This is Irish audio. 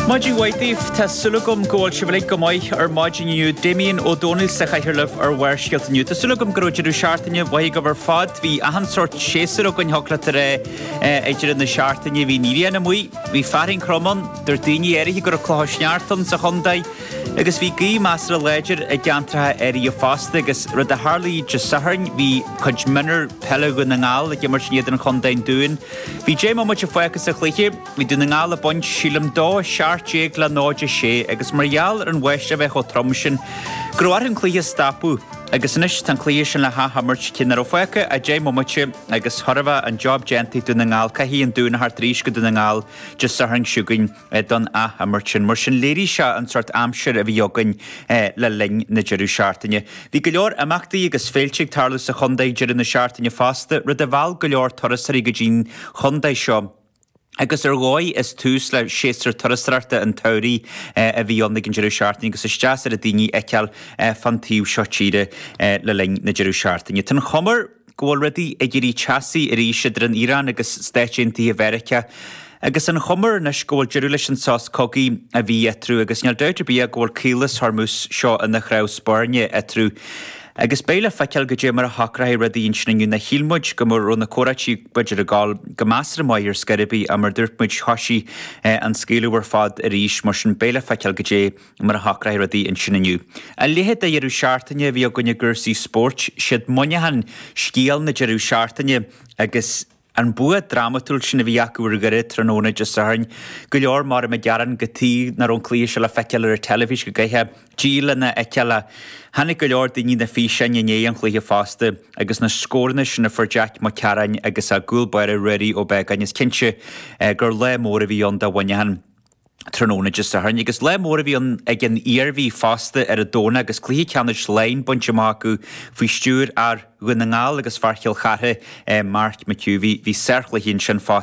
Maidin mhaith daoibh! Tá súil agam go bhfuil sibh uilig go maith ar maidin inniu. Damien Ó Dónaill sa chathaoir libh ar Bharrscéalta inniu. Tá súil agam go raibh deireadh seachtaine mhaith agaibh ar fad. Bhí achan sort séasúr againn thiocfadh leat a rá ag deireadh na seachtaine. Bhí an ghrian amuigh, bhí fearthainn throm ann, dúirt daoine áirithe go raibh clocha sneachta ann sa chontae agus bhí gaoth measartha láidir i gceantracha áirithe fosta agus, rud a tharlaigh Dé Sathairn, bhí cuid mionúr peile Dhún na nGall ag imirt in éadan Chontae an Dúin. Bhí deich mbomaite fágtha sa chluiche. Bhí Dún na nGall ag baint, sílim, 2 17 le 0 6 agus mar gheall ar an bháisteach a bheith chomh trom sin go raibh orthu an cluiche a stopadh. Agus anois tá an cluiche sin le hath-imirt, cé ná raibh fágtha ach deich mbomaite agus go raibh an job déanta ag Dún na nGall caithfidh an Dún a theacht arís go Dún na nGall Dé Sathairn seo chugainn. don ath-imirt sin. Mar sin, léirigh sé an sort aimsir a bhí againn le linn na deireadh seachtaine. Bhí go leor imeachtaí agus féilte ag tarlú sa chontae ag deireadh na seachtaine fosta, rud a mheall go leor turasóirí go dtí'n chontae seo, agus ar dhóigh is tús le séasúr turasóireachta an tsamhraidh a bhí ann ag an deireadh seachtaine agus is deas an rud daoine a fheiceáil fán taobh seo tíre le linn na deireadh seachtaine. Tá an chuma air. go bhfuil rudaí ag éirí teasaí arís idir an Iaráin agus Stáit Aontaithe Mheiriceá agus an chuma air anois go bhfuil deireadh leis an sos cogaidh a bhí eatarthu agus níl dabht ar bith ach go bhfuil Caolas Hormuz seo ina chnámh spairne eatarthu agus beidh le feiceáil goidé mar a shocróidh rudaí ansin inniu nó shíl muid go raibh na comhráití b'fhéidir ag dul go measartha maith ar scor ar bith ach mar dúirt muid thoisigh an scaoileadh ar fad arís mar sin beidh le feiceáil goidé mar a shocróidh rudaí ansin inniu. A leithéid de dheireadh seachtaine a bhí againn i gcúrsaí spóirt. Siad Muineachán scéal na deireadh seachtaine agus an bua drámatúil sin a bhí acu ar Dhoire tráthnóna Dé Sathairn. Go leor maram ag gearán cad chuige ná raibh an cluiche seo le feiceáil ar an teilifís go gcaithfeá díol lena fheiceáil ach chonaic go leor daoine na físeáin i ndiaidh an chluiche fosta agus na scóranna sin a fuair Jack Mac Cearáin agus a gcúl báire Ruairí Ó Beagáin is cinnte gur lá mór a bhí ann do Mhuineachán. tráthnóna Dé Sathairn agus lá mór a bhí ann ag an Iarmhí fosta ar an Domhnach agus cluiche ceannais Laighean bainte amach acu faoi stiúir fhear Dhún na nGall agus fear Chill Chartha, Mark McHugh. Bhí sárchluichí ansin fosta.